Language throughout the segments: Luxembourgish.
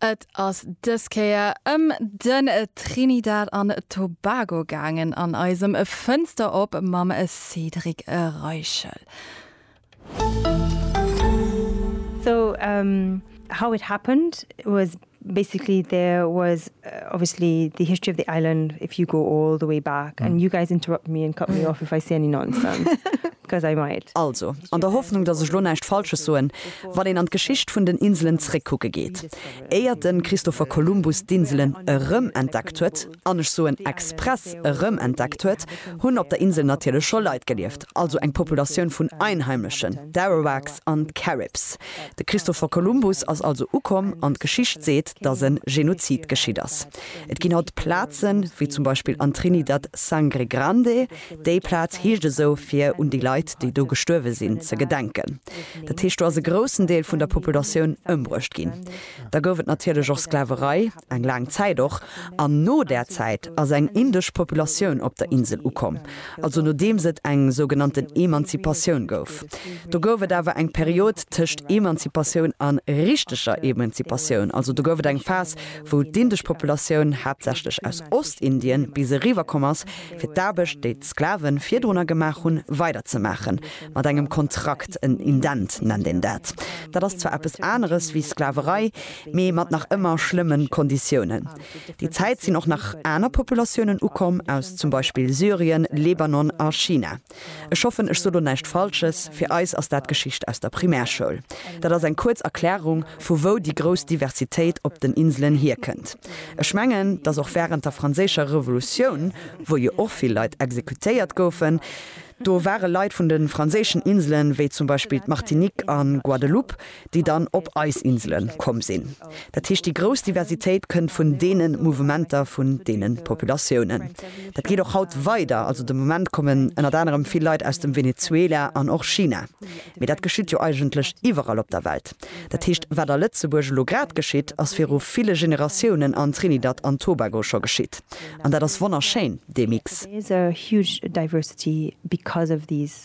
Et ass dës Kéier ëm den Trinidad an Tobago gaangen an eisem Fënster op mam Cédric Reichel. So how it happened was. Basically there was obviously the history of the island if you go all the way back and you guys interrupt me and cut me off if I say any nonsense because I might. Also, an der Hoffnung, dass ech lo näischt Falsches soen, wann een an d'Geschicht vun den Inselen zréckkucke geet, éiert de Christopher Columbus d'Inselen erëmentdeckt huet, an ech soen express erëm entdeckt huet, hunn op der Insel natierlech scho Leit gelieft, also eng Populatioun vun Einheimlechen, d'Arawaks an d'Caribs. De Christopher Columbus ass also ukomm an d'Geschicht seet, datt e Genozid geschitt ass. Et ginn haut Plazen, wéi zum Beispill an Trinidad Sangre Grande, déi Plaz heescht esou, fir un déi Leit, déi do gestuerwe sinn, ze gedenken. Dat heescht, do ass e groussen Deel vun der Populatioun ëmbruecht ginn. Da gouf et natierlech och Sklaverei. eng laang Zäit och, an no där Zäit ass eng indesch Populatioun op der Insel ukomm, also nodeems et eng sougenannten Emanzipatioun gouf. Do gouf et awer eng Period tëscht Emanzipatioun a richteger Emanzipatioun, also do gouf et eng Phas, wou d'indesch Populatioun haaptsächlech aus Ostindien bis eriwwer komm ass, fir d'Aarbecht, déi d'Sklave virdrunner gemaach hunn, weiderzemaachen, mat engem Kontrakt, en Indent nennt een dat. Dat ass zwar eppes aneres wéi Sklaverei, mee mat nach ëmmer schlëmmen Konditiounen. Déi Zäit sinn och nach aner Populatiounen ukomm, aus zum Beispill Syrien, Lebanon a China. Ech hoffen ech so lo näischt Falsches, fir eis ass dat Geschicht aus der Primärschoul. Dat ass eng kuerz Erklärung vu wou déi grouss Diversitéit op den Inselen hierkënnt. Ech mengen, dass och während der franséischer Revolutioun, wou jo och vill Leit exekutéiert goufen, do ware Leit vun de franséischen Inselen, wéi zum Beispill d'Martinique a Guadeloupe, déi dann op eis Insele komm sinn. Dat heescht, déi grouss Diversitéit kënnt vun deene Mouvementer, vun deene Populatiounen. Dat geet och haut weider. Also de Moment kommen ënnert anerem vill Leit aus dem Venezuela an och China. Mee dat geschitt jo eigentlech iwwerall op der Welt. Dat heescht, wat a Lëtzebuerg elo grad geschitt, ass viru ville Generatiounen an Trinidad an Tobago scho geschitt. An dat ass wonnerschéin, dee Mix.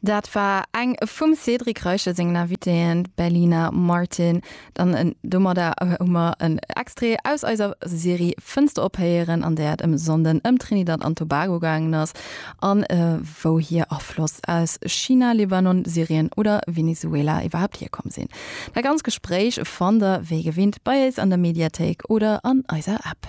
Dat war eng vum Cédric Reiche sengen Invitéen, d'Berlina Martin. Dann domadder hu mer en Extrait aus eiser Serie Fënster op héieren, an där et ëm Sonden ëm Trinidad an Tobago gaangen ass, a wou hir Afloss aus China, Libanon, Syrien oder Venezuela iwwerhaapt hierkomm sinn. Dat ganz Gespréich fannt der wéi gewinnt bei éis an der Mediathéik oder an eiser App.